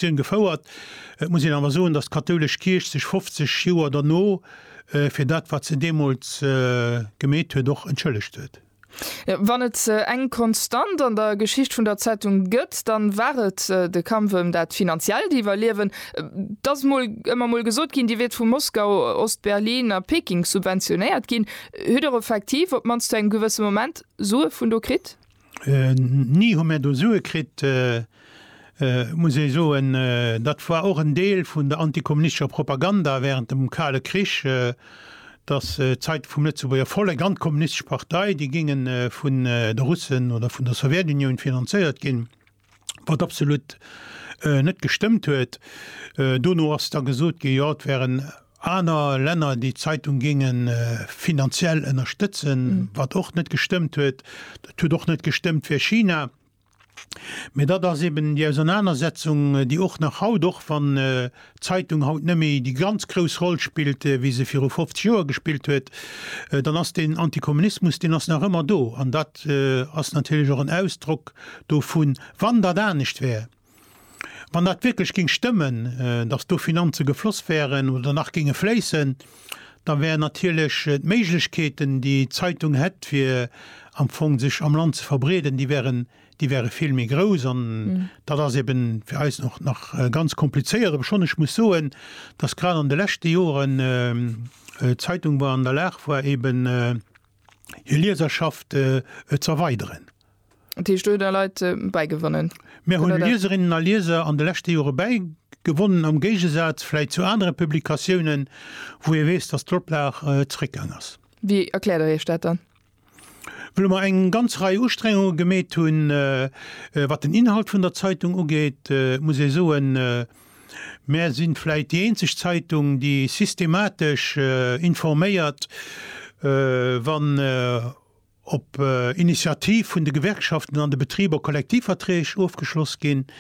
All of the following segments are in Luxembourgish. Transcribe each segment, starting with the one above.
Diskussioun gefouert. Et muss een awer soen, datt d'kathoulesch Kierch sech 50 Joer derno fir dat, wat se deemools gemeet huet, och entschëllegt huet. Wann et eng Konstant an der Geschicht vun der Zeitung gëtt, dann war et de Kampf ëm dat finanziellt Iwwerliewen. Et ass mol ëmmer mol gesot ginn, Dir wiert vu Moskau, Ost-Berlin a Peking subventionéiert ginn. Huet Dir och effektiv, op d'mannst zu engem gewësse Moment, Sue vun do kritt? Ni hu mär do Sue kritt. Muss ee soen, dat war och en Deel vun der antikommunistescher Propaganda während dem Kale Krich, dass d'Zeitung vum Lëtzebuerger Vollek an d'Kommunistesch Partei, déi géinge vun de Russen oder vun der Sowjetunioun finanzéiert ginn. wat absolut net gestëmmt huet. Dono ass da gesot ginn, jo, et wären aner Länner, déi d'Zeitung géinge finanziell ënnerstëtzen, wat och net gestëmmt huet. Dat huet och net gestëmmt fir China. Mee dat ass eben déi Ausernanersetzung, déi och nach haut, och wann Zeitung haut nëmme déi ganz grouss Roll spillt wéi se viru 50 Joer gespillt huet, dann ass deen Antikommunismus, deen ass nach ëmmer do an dat ass natierlech och en Ausdrock dovun. Wann dat anescht wär, wann dat wierklech géing stëmmen, datt do Finanze gefloss wären oder nach géinge fléissen, da wären natierlech d'Méiglechkeeten déi d'Zeitung hätt fir am Fong sech am Land ze verbreeden, déi wären déi wäre vill méi grouss an dat ass eben fir eis och nach ganz komplizéiert, obschonn ech muss soen, dass grad an de leschte Joren d'Zeitung war an der Lag war eben hir Lieserschaft z'erweideren. Dat heescht, do hutt Der Leit bäigewonnen? Mir hunn Lieserinnen a Lieser an de leschte Jore bäigewonnen, am Géigesaz vläicht zu anere Publikatiounen, wou ee weess, dass d'Oplag zréckgaang ass. Wéi erkläert Der Iech dat dann? wëlle mer eng ganz Rei Ustrengunge gemeet hunn, wat den Inhalt vun der Zeitung ugeet. Et muss ee soen, mär si vläicht déi eenzeg Zeitung, déi systematesch informéiert, wann op Initiativ vun de Gewerkschaften an de Betriber Kollektivverträg ofgeschloss ginn.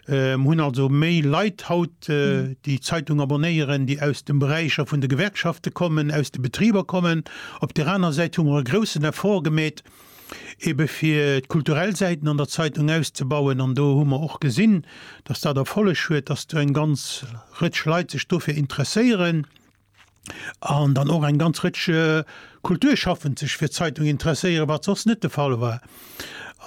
Mir hunn also méi Leit haut, déi d'Zeitung abonnéieren, déi aus de Beräicher vun de Gewerkschafte kommen, aus de Betriber kommen. Op där aner Säit hu mer e groussen Effort gemeet, ebe fir d'kulturell Säiten an der Zeitung auszebauen. An do hu mer och gesinn, dass dat Erfolleg huet, dass do eng ganz Rëtsch Leit sech dofir interesséieren. an dann och eng ganz Rëtsch Kulturschaffend sech fir d'Zeitung interesséieren, wat soss net de Fall war.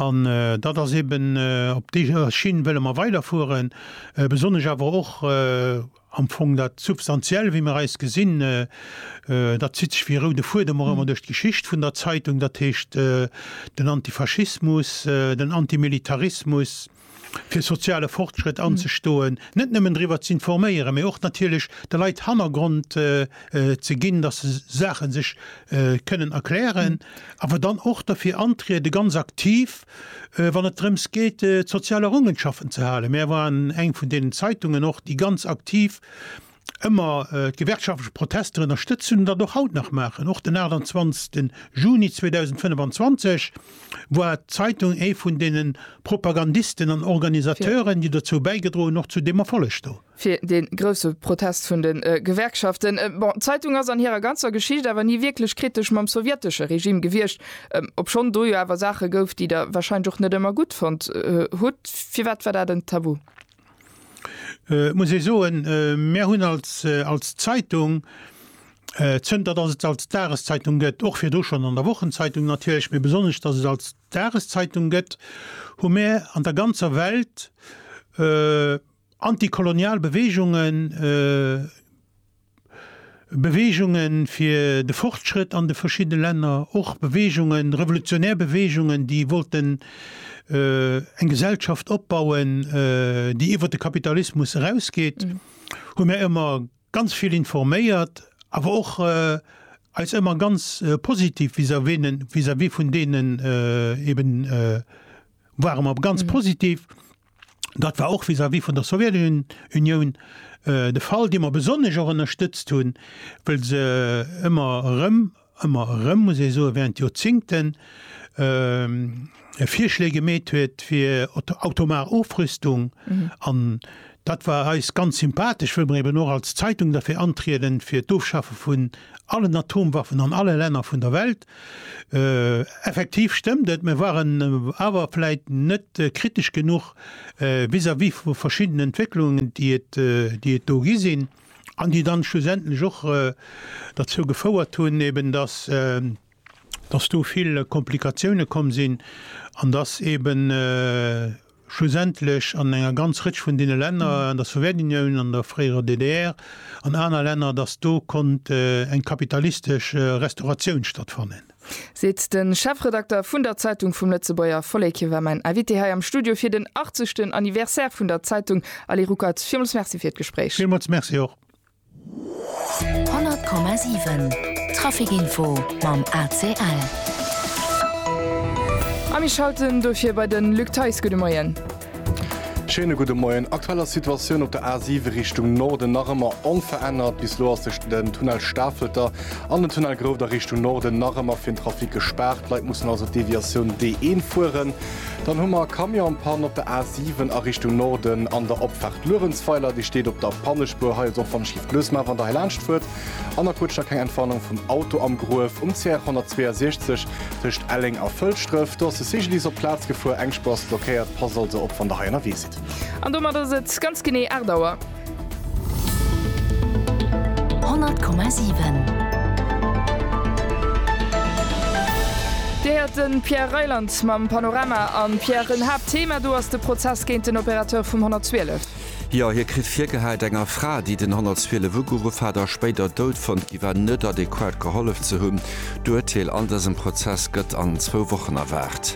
An dat ass eeben, op deeër Schinn wëlle mer weiderfueren, besonnesch awer och am Fong dat Substantiell, wéi mer eis gesinn. Dat zitt sech wéi e roude Fuedem och ëmmer duerch d'Geschicht vun der Zeitung, dat heescht den Antifaschismus, den Antimilitarismus, fir soziale Fortschrëtt anzestoen, net nëmmen driwwer ze informéieren, mee och natierlech de Leit Hannergrond ze ginn, datt se Saache sech kënnen erklären, awer dann och derfir antriede ganz aktiv, wann et drëms geet d'sozial Errungenschaften ze halen. Mär waren eng vun deenen Zeitungen och, déi ganz aktiv ëmmer d'gewerkschaftlech Protester ënnerstëtzt hunn an dat och haut nach maachen. Och den 28 Juni 2025 war d'Zeitung ee vun deene Propagandisten an Organisateuren, déi dozou bäigedroen hunn, och zu deem Erfolleg do. Fir dee grousse Protest vun de Gewerkschaften. Bon, d'Zeitung ass an hirer ganzer Geschicht awer ni wierklech kritesch mam sowjetesche Regime gewiescht, obschonn do jo awer Saache gouf, déi Der warscheinlech och net ëmmer gutt fonnt hutt. Firwat war dat en Tabu? muss ee soen, mir hunn als, als Zeitung, zënter datt et se als Dageszeitung gëtt, och virdu schonn an der Wochenzeitung natierlech, mee besonnesch datt et se als Dageszeitung gëtt, hu mir an der ganzer Welt antikolonial Beweegungen Beweegunge fir de Fortschrëtt an de verschidde Länner, och Beweegungen, revolutionär Beweegungen, déi wollten eng Gesellschaft opbauen, déi iwwer de Kapitalismus erausgeet, hu mär ëmmer ganz vill informéiert, awer och eis ëmmer ganz positiv vis-à-vis vun deenen, eeben ware mer ganz positiv. Dat war och vis-à-vis vun der Sowjetunioun de Fall, déi mer besonnesch och ënnerstëtzt hunn, wëll se ëmmer erëm, ëmmer erëm, muss ee soen, während Joerzingten Virschléi gemeet huet fir atomar Ofrüstung. An dat war eis ganz sympathesch, wëll mer eben och als Zeitung derfir antrieden, fir d'Ofschafe vun allen Atomwaffen an alle Länner vun der Welt. Effektiv stëmmt et, mir waren awer vläit net kritesch genuch vis-à-vis vu verschiddenen Entwécklungen, déi et do gi sinn an déi dann schlussendlech och derzou gefouert hunn, eben dass do vill Komplikatiounen komm sinn an dass eben, schlussendlech an enger ganz Rëtsch vun deene Länner, an der Sowjetunioun, an der fréierer DDR, an aner Länner, datt do konnt eng kapitalistesch Restauratioun stattfannen. Seet de Chefredakter vun der Zeitung vum Lëtzebuerger Vollek. Hie war mäin Invité hei am Studio fir den 80. Anniversaire vun der Zeitung. Ali Ruckert, villmools Merci fir d'Gespréich. Villmools Merci och. 100,7 Traficinfo mam ACL. A mir schalten dofir bei de Luc Theis. Gudde Moien. Schéine gudde Moien. Aktuell ass d'Situatioun op der A7 Richtung Norden nach ëmmer onverännert. Bis elo ass tëschent dem Tunnel Stafelter an dem Tunnel Groufter Richtung Norden nach ëmmer fir den Trafic gespaart. D'Leit mussen also d'Deviatioun D1 fueren. Dann hu mer Camionspanne op der A7 a Richtung Norden an der Opfaart Luerenzweiler. Déi steet op der Pannespuer. Hei ass och wann ech géif lues man, wann der hei laanscht fuert. An da quëtscht der keng Entwarnung vum Auto am Gruef um CR 162 tëscht Elleng a Fëlschdref. Do ass de Cyclist op d'Plaz gefuer. Eng Spuer ass blockéiert. Passt also op wann der hei ënnerwee sidd. An domat ass et ganz genee 8 Auer. Dir héiert de Pierre Reyland mam Panorama. A Pierre, en Haaptthema do ass de Prozess géint den Opérateur vum 112. Jo, hie kritt virgehaalt, eng a Fra, déi den 112 ugeruff hat a spéider dout fonnt gi war, net adequat gehollef ze hunn. D'Urteel an dësem Prozess gëtt an zwou Wochen erwaart.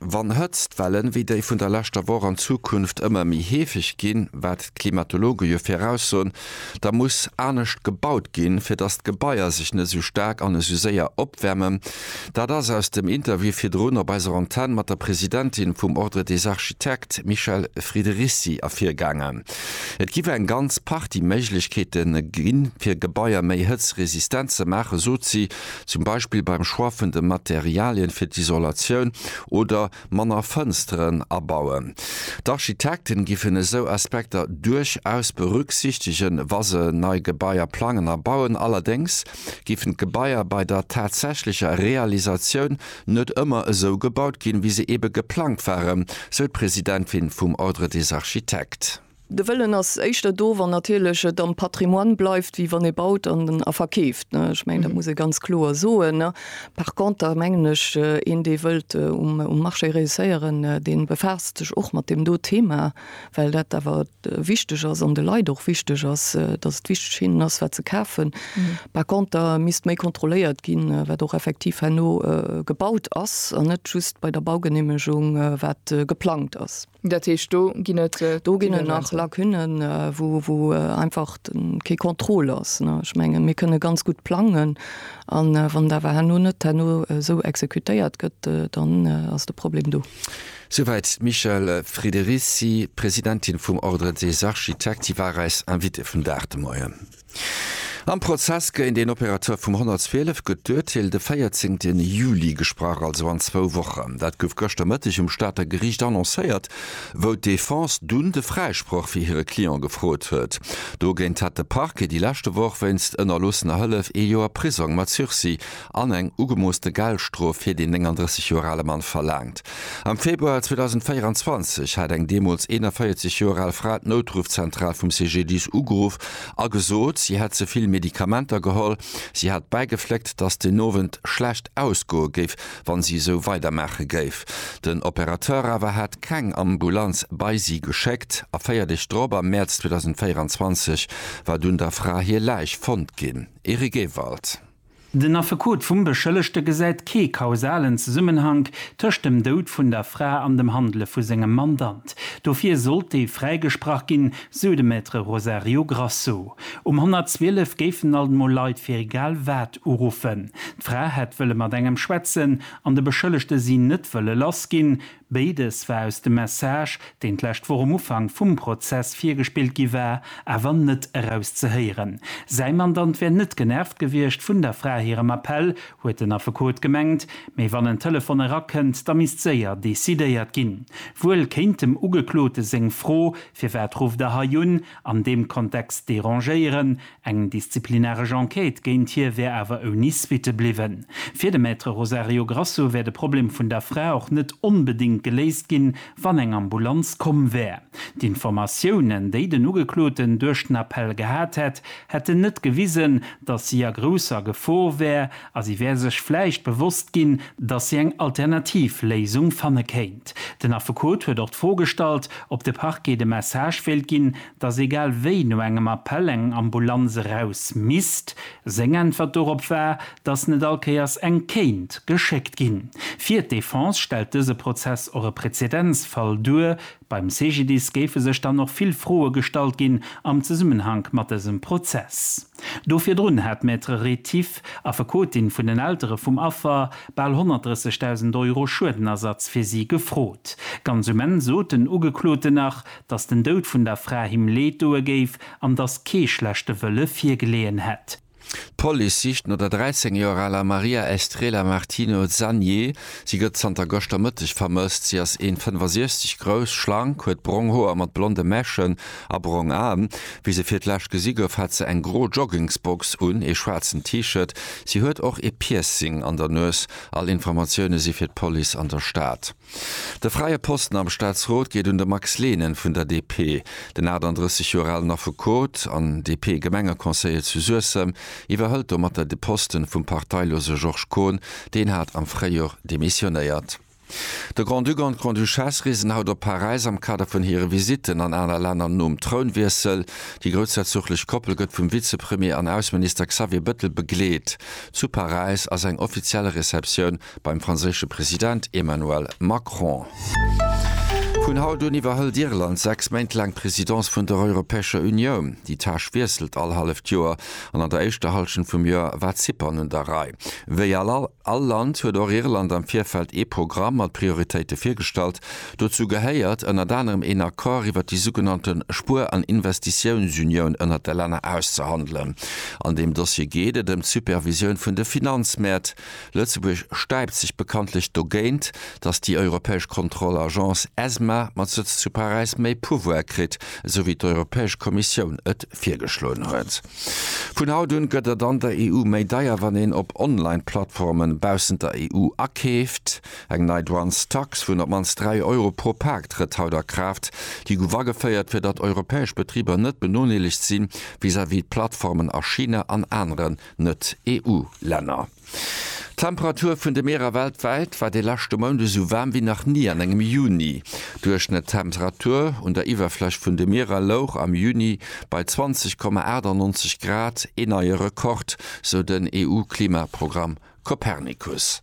Wann Hëtztwellen, wéi déi vun der leschter Woch, an Zukunft ëmmer méi heefeg ginn, wat d'Klimatologe jo viraussoen, da muss anescht gebaut ginn, fir datt d'Gebaier sech net esou staark an esou séier opwäermen. Dat ass aus dem Interview virdrun op eiser Antenn mat der Presidentin vum Ordre des Architectes, Michèle Friederisi, ervirgaangen. Et giff eng ganz Partie Méiglechkeete ginn, fir Gebaier méi hëtzresistent ze maachen, sot si. zum Beispill beim Choix vun de Materialien fir d'Isolatioun, oder manner Fënsteren abauen. D'Architekten giffen esou Aspekter duerchaus berücksichtegen, wa se nei Gebaier plangen a bauen. Allerdéngs giffen d'Gebaier bei der tatsächlecher Realisatioun net ëmmer esou gebaut ginn, wéi se ebe geplangt waren, sou d'Presidentin vum Ordre des Architectes. De Wëllen ass éischter do, wann natierlech et am Patrimoine bleift, wéi wann ee baut an a verkeeft. Ech mengen, dat muss ee ganz kloer soen. Par conter mengen ech, een, dee wëllt um Marché reusséieren, dee befaasst sech och mat deem do Thema, well dat awer wichteg ass an de Leit och wichteg ass, dass et wichteg fir hinnen ass, wat se kafen. Par conter misst méi kontrolléiert ginn, wat och effektiv herno gebaut ass an net just bei der Baugeneemegung, wat geplangt ass. Dat heescht, do ginn et Dinge. Do ginn et nach Lacunnen, wou einfach kee Contrôle ass. Ech mengen, mir kënne ganz gutt plangen an wann et awer herno net herno esou exekutéiert gëtt, dann ass de Problem do. Souwäit d'Michèle Friederici, Presidentin vum Ordre des Architectes. Si war eis Invitée vum Dag de Moien. Am Prozess géint een Opérateur vum 112 gëtt d'Urteel de 14 Juli gesprach, also an zwou Wochen. Dat gouf gëschter Mëtteg um Stater Geriicht annoncéiert, wou d'Defense dunn de Fräisproch fir hire Client gefrot huet. Dogéint hat de Parquet déi leschte Woch wéinst ënnerloossener Hëllef ee Joer Prisong mat Sursis an eng ugemoosste Geldstrof fir deen 39 Joer ale Mann verlaangt. Am Februar 2024 hat eng deemools 41 Joer al Fra d'Noutruffzentral vum CGDIS ugeruff a gesot, si hätt ze vill Medikamenter geholl. Si hat bäigefléckt, dass den Owend schlecht ausgoe géif, wa si esou weidermaache géif. Den Operateur awer hat keng Ambulanz bei si geschéckt a véier Deeg drop, am Mäerz 2024, war dunn der Fra hir Läich fonnt ginn. Eric Ewald. Den Affekot vum Beschëllegte gesäit kee kausalen Zesummenhank tëscht dem Doud vun der Fra an dem Handele vu sengem Mandant. Dofir sollt dee fräigesprach ginn, sou de Maître Rosario Grasso. Um 112 géifen alt mol Leit fir egal wat uruffen. D'Fra hätt wëlle mat engem schwätzen an de Beschëllegte si net wëlle lass ginn, Béides war aus dem Message, deen d'lescht Woch um Ufank vum Prozess virgespillt gi war, awer net erauszehéieren. Säi Mandant wär net genervt gewiescht vun der Fra hirem Appell, huet den Affekot gemengt. Mee wann en Telefon erakënnt, da misst séier decidéiert ginn. Wuel kéint dem Ugeklote seng Fro, Firwat rufft Der hei un? an deem Kontext derangéieren, Eng disziplinaresch Enquête géint hie wär awer ouni Suitte bliwwen. Fir de Maître Rosario Grasso wär de Problem vun der Fra och net onbedéngt geléist ginn, wann eng Ambulanz komm wär. D'Informatiounen, déi den Ugekloten duerch den Appell gehat hätt, hätten net gewisen, datt si a grousser Gefor wär a si wär sech vläicht bewosst ginn, datt si eng alternativ Léisung fanne kéint. Den Affekot huet och d'Fro gestallt, ob de Parquet de Message wéilt ginn, dass egal wéi no engem Appell eng Ambulanz eraus misst. Seng Äntwert dorop war, dass net all Kéiers eng kéint geschéckt ginn. Fir d'Defense stellt dëse Prozess och e Prezedenzfall duer. Beim CGDIS géife sech dann och vill Froe gestallt ginn am Zesummenhank mat dësem Prozess. Do virdrun hat d'Maître Rétif, Affekotin vun den Eltere vum Affer, bal 130.000 Euro Schuedenersatz fir si gefrot. Ganz um Enn sot den Ugekloten nach, dass den Doud vun der Fra him Leed doe géif an dass kee schlechte Wëlle virgeleeën hätt. D'Police sicht no der 13 Joer aler Maria Estrela Martino Zanie. Si gëtt zanter gëschter Mëtteg vermësst. Si ass 1,65 grouss, schlank, huet brong Hoer mat blonde Mechen a brong Aen. Wéi se fir d'lescht gesi gouf, hat se eng gro Joggingsbox un, ee schwaarzen T-Shirt. Si huet och ee Piercing an der Nues. All Informatioune si fir d'Police an der Stad. De fräie Posten am Staatsrot geet un de Max Lehnen vun der DP. Den 38 Joer alen Affekot an DP-Gemengeconseiller zu Suessem iwwerhëlt domatter de Posten vum parteilose Georges Kohn, deen hat am Fréijor demissionéiert. De Grand-Duc an d'Grande-Duchesse reesen haut op Paräis am Kader vun hire Visitten an aner Länner nom Trounwiessel. Déi groussherzoglech Koppel gëtt vum Vizepremier an Ausseminister Xavier Bëttel begleet. Zu Paräis ass eng offiziell Receptioun Beim franséische President Emmanuel Macron. Vun haut un iwwerhëlt Irland 6 Méint laang d'Presidence vun der Europäescher Unioun. Déi Tâche wiesselt all halleft Joer an an der éischter Hallschent vum Joer war Zypern un der Rei. Wéi all Land huet och Irland am Virfeld ee Programm mat Prioritéite virgestallt. Dozou gehéiert ënnert anerem een Accord iwwert déi sougenannte Spuer an Investitiounsunioun ënnert de Länner auszehandelen. An deem Dossier geet et ëm d'Supervisioun vun de Finanzmäert. Lëtzebuerg stäipt sech bekanntlech dogéint, datt déi europäesch Kontrollagence Esma mat Sëtz zu Paräis méi Pouvoire kritt, esou wéi d'Europäesch Kommissioun et virgeschloen huet. Vun haut un gëtt et an der EU méi deier, wann een op Online-Plattformen baussent der EU akeeft. Eng nei Douanestax vun op d'mannst 3 Euro pro Pak trëtt haut a Kraaft. Déi gouf ageféiert, fir datt europäesch Betriber net benodeelegt si vis-à-vis d'Plattformen a China an aneren Net-EU-Länner. D'Temperatur vun de Mierer weltwäit war de leschte Mount esou waarm wéi nach ni an engem Juni. D'Duerchschnëttemperatur un der Iwwerfläch vun de Mierer louch am Juni bei 20,98 Grad, ee neie Rekord, sou den EU-Klimaprogramm Copernicus.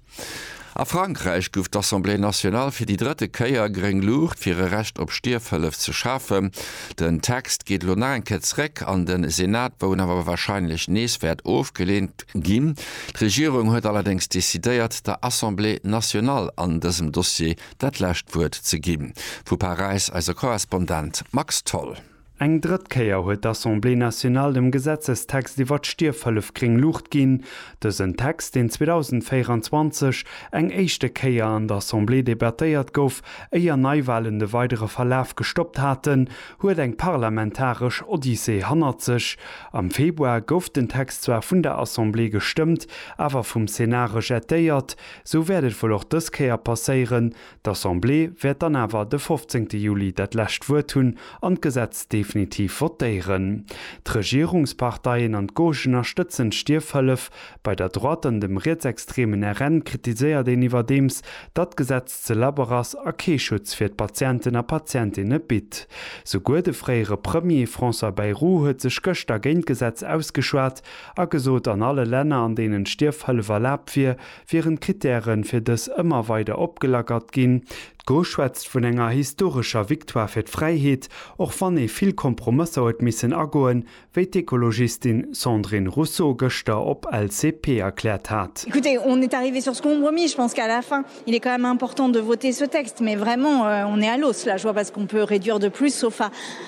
A Frankräich gouf d'Assemblée nationale fir déi drëtte Kéier gréng Luucht fir e Recht op Stierfhëllef ze schafen. Den Text geet elo nach eng Kéier zréck an de Senat, wou en awer warscheinlech nees wäert ofgeleent ginn. D'Regierung huet allerdéngs decidéiert, der Assemblée nationale an dësem Dossier dat lescht Wuert ze ginn. Vu Paräis eise Korrespondent Max Tholl. Eng drëtt Kéier huet d'Assemblée nationale dem Gesetzestext iwwert d'Stierfhëllef gréng Luucht ginn. Dësen Text, deen 2024 eng éischte Kéier an der Assemblée debattéiert gouf, éier Neiwalen de weidere Verlaf gestoppt haten, huet eng parlamentaresch Odyssee hannert sech. Am Februar gouf den Text zwar vun der Assemblée gestëmmt, awer vum Senat rejetéiert. Sou wäert et wuel och dës Kéier passéieren, D'Assemblée wäert dann awer de 15 Juli dat lescht Wuert hunn an d'Gesetz definitiv votéieren. D'Regierungsparteien an d'Gauche ënnerstëtzen d'Stierfhëllef bei der Droite an dem rietsextremen RN kritiséiert een iwwerdeems, datt d'Gesetz ze labber ass a kee Schutz fir d'Patienten a Patientinne bitt. Souguer de fréiere Premier François Bayrou huet sech gëschter géint d'Gesetz ausgeschwat a gesot, an alle Länner, an deenen d'Stierfhëllef erlaabt wier, wieren d'Krittären fir dës ëmmer weider opgelackert ginn. D'Gauche schwätzt vun enger historescher Victoire fir d'Fräiheet, och wann ee vill Kompromësser huet missen agoen, wéi d'Ekologistin Sandrine Rousseau gëschter op LCP erkläert hat.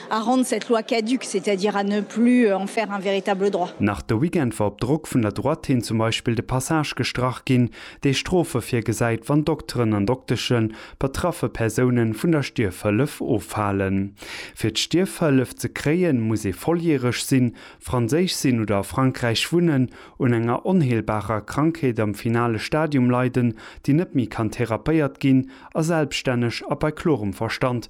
à rendre cette loi caduque, c'est-à-dire à ne plus en faire un véritable droit. Nach de Weekend war op Drock vun der Droite hin zum Beispill de Passage gestrach ginn, dee Strofe virgesäit, wann Dokteren an Dokteschen betraffe Persoune vun der Stierfhëllef ofhalen. Fir d'Stierfhëllef ze kréien, muss ee volljäreg sinn, Franséisch sinn oder a Frankräich wunnen, un enger onheelbarer Krankheet am finale Stadium leiden, déi net méi kann therapéiert ginn a selbststänneg a bei klorem Verstand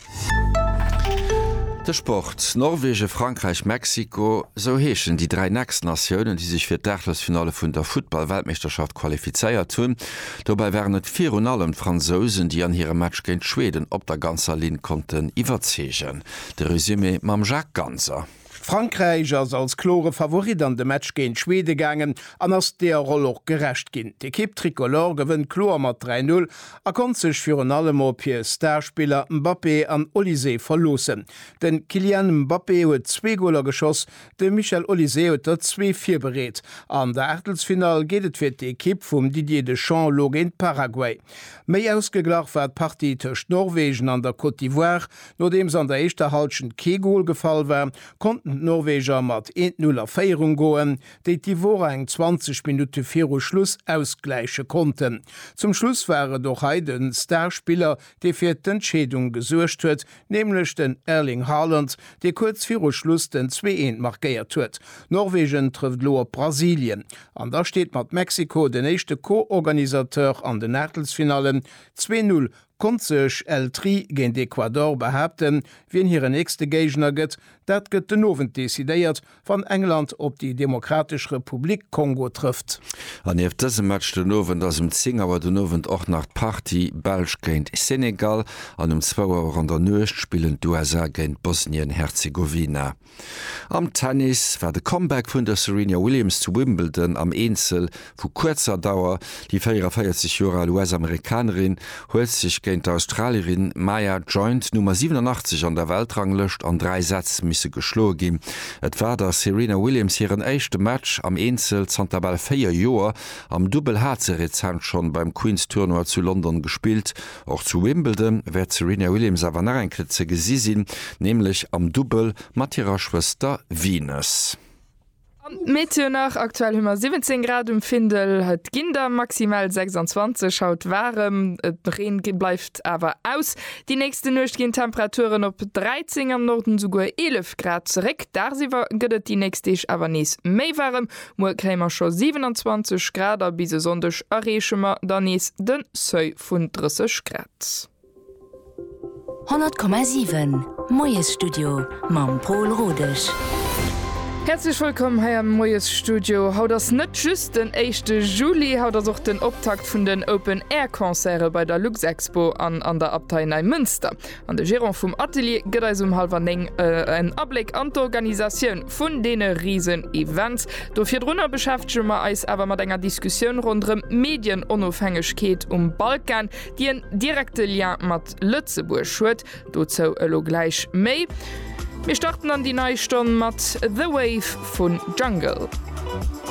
De Sport, Norwegen, Frankräich, Mexiko, esou heeschen déi dräi nächst Natiounen, déi sech fir d'Aachlesfinale vun der Futtball-Weltmeeschterschaft qualifizéiert hunn. Dobäi waren et virun allem d'Fransousen, déi an hirem Match géint Schweden op der ganzer Linn konnten iwwerzeegen. De Resumé mam Jacques Ganser. Frankräich ass als klore Favorit an de Match géint Schweden gaangen an ass deer Roll och gerecht ginn. D'Ekipp Tricolore gewënnt kloer mat 3, 0 a konnt sech virun allem op hir Starspiller Mbappé an Olysée verloossen. De Kylian Mbappé huet zwee Goler geschoss, de Michel Olysée huet der zwee virbereet. An der Aachtelsfinall geet et fir d'Ekipp vum Didier Deschamps elo géint Paraguay. Méi ausgeglach war d'Partie tëscht Norwegen an der Côte d'Ivoire. Nodeems an der éischter Halschent kee Gol gefall war, konnten d'Norweger mat 1-0 a Féierung goen, déi d'Ivorer eng 20 Minutte viru Schluss ausgläiche konnten. Zum Schluss war et och hei de Star-Spiller, dee fir d'Entscheedung gesuergt huet, nämlech den Erling Haaland, dee kuerz viru Schluss den 2-1 markéiert huet. Norwegen trëfft elo op Brasilien an da steet mat Mexiko den éischte Co-Organisateur an den Aachtelsfinallen. 2-0 Konnt sech El Tri géint Ecuador behaapten. Wien hire nächste Géigner gëtt, dat gëtt den Owend decidéiert, wann England op déi Demokratesch Republik Kongo trëfft. An nieft dësem Match den Owend ass um 10 Auer den Owend och nach d'Partie Belsch géint Senegal an um zwou Auer an der Nuecht spillen d'USA géint Bosnien-Herzegowina. Am Tennis war de Comeback vun der Serena Williams zu Wimbledon am Eenzel vu kuerzer Dauer. Déi 44 Joer al US-Amerikanerin huet sech géint d'Australierin Maya Joint, Nummer 87 an der Weltranglëscht, an dräi Sätz misse geschloe ginn. Et war der Serena Williams hiren éischte Match am Eenzel zanter bal véier Joer. Am Dubbel hat se rezent schonn beim Queen's Tournoi zu London gespillt. Och zu Wimbledon wäert d'Serena Williams awer nach eng Kéier ze gesi sinn, nämlech am Dubbel mat hirer Schwëster Venus. An d'Meteo nach, Aktuell hu mer 17 Grad um Findel, et ginn der maximal 26. Haut waarem, de Reen bleift awer aus. Déi nächste Nuecht ginn d'Temperaturen op 13, am Norden esouguer 11 Grad zeréck. Dagsiwwer gëtt et déi nächst Deeg awer nees méi waarem, Muer kréie mer scho 27 Grad a bis e Sonndeg erreeche mer dann nees de Seuil vun 30 Grad. 100,7 Moiesstudio mam Paul Rodesch. Häerzlech wëllkomm hei am Moiesstudio. Haut ass net just den éischte Juli, haut ass och den Optakt vun den Open Air Concerte bei der Luxexpo an an der Abtei Neimënster. An de Gerant vum Atelier gëtt eis um hallwer 9 en Abléck an d'Organisatioun vun deene Riesen-Events. Do virdrunner beschäftege mer eis awer mat enger Diskussioun ronderëm d'Medienonofhängegkeet um Balkan, déi en direkte Lien mat Lëtzebuerg huet. Dozou elo gläich méi. Mir starten an déi nei Stonn mat The Wave vu Jungle.